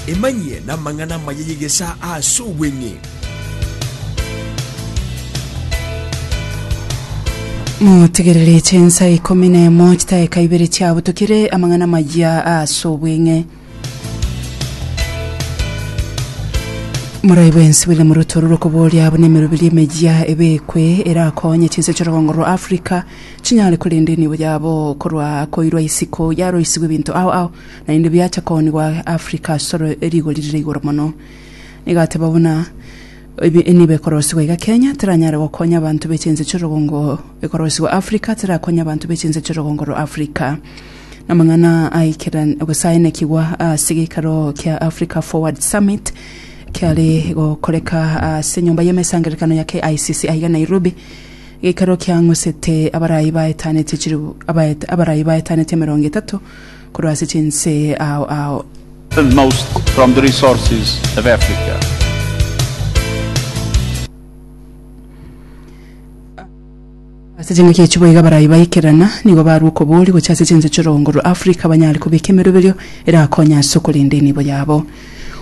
Emanyie namang'ana amaya y'egesaa ase obweng'e. Motegerere chinsa ikomi na emo chitaeka ibere chiabutokire amang'ana amaya ase obweng'e. Morai bwensi William Ruto orure okoboria buna emeroberi emeyia ebekwe erakonye chinse chi'orogongo rwa Africa chinyare korenda enibo yabo korwa koirwa isiko yaroisigwe ebinto ao ao naende biacha koonigwa Africa asore rigori rire igoro mono. Nigateba buna ebe- enibo ekorosigwa iga Kenya teranyare gokonya abanto be chinse chi'orogongo ekorosigwa Africa terakonya abanto be chinse chi'orogongo rwa Africa. Namang'ana aikeran- gose aenekigwa ase geikaro kia Africa Forward Summit kiare gokoreka ase enyomba y'emesangererekano ya KICC aiga Nairobi, geikaro kiang'usete abarai baetanete chilifu abaet- abarai baetanete emerongo etato korwa ase chinse ao ao. and most from the resources of Africa. Ase chingaki echio boigo abarai baikerana nigo barwa okobooria gochia ase chinse chi'orogongo rwa Afrika banyare kobeka emeroberio erakonye ase okorenda enibo yabo.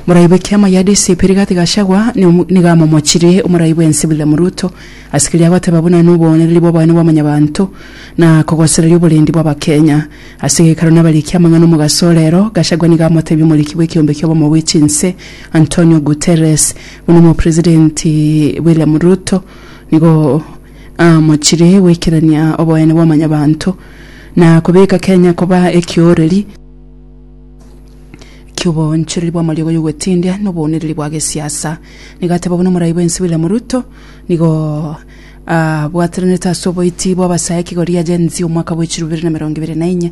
Morai bw'ekiama gia DCP Rigathi Gachagua nigo amomochire omorai bw'ense William Ruto ase keria agoteba buna n'oboonereri bw'obonene bwa mwanyabanto na kogosereria oborendi bw'Abakenya. Ase gekaro nabarikia amang'ana omogaso orero, Gachagua nigo amotebia omoriki bw'ekeombe ki'obomo bwe chinse Antonio Guterres buna omopresidenti William Ruto Nigo amochire goikerania oboyene bwa mwanyabanto, na kobeka Kenya koba ekioreri ki'oboonchoreri bw'amariogo y'ogwetindia na oboonereri bwa gesiasa. Nigo ateba buna Omorai bw'ense William Ruto nigo abwataranete ase oboiti bw'abasae ekigo riaGen-Z omwaka bw'echirobere na emerongo ebere na inye.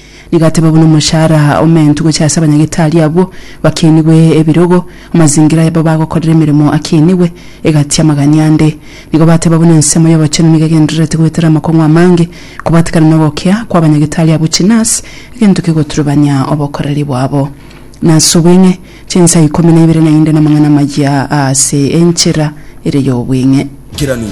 Nigateba buna omochara omentu gochia ase abanyagitari abwo bakinigwe ebirogo, amazingira ayabo bagokorera emeremo akinigwe, egati amagania ande. Nigo bateba buna ensemo y'obochenu nigo egendererete goetera amakong'u amange, kobatikana nogokia kw'abanyagitari abwo chinasi, egento kegoturubania obokoreri bwabo. Nase obweng'e, chinsa ikomi na ibere naende namang'ana amayia aase enchera ere y'obweng'e. Kiranu.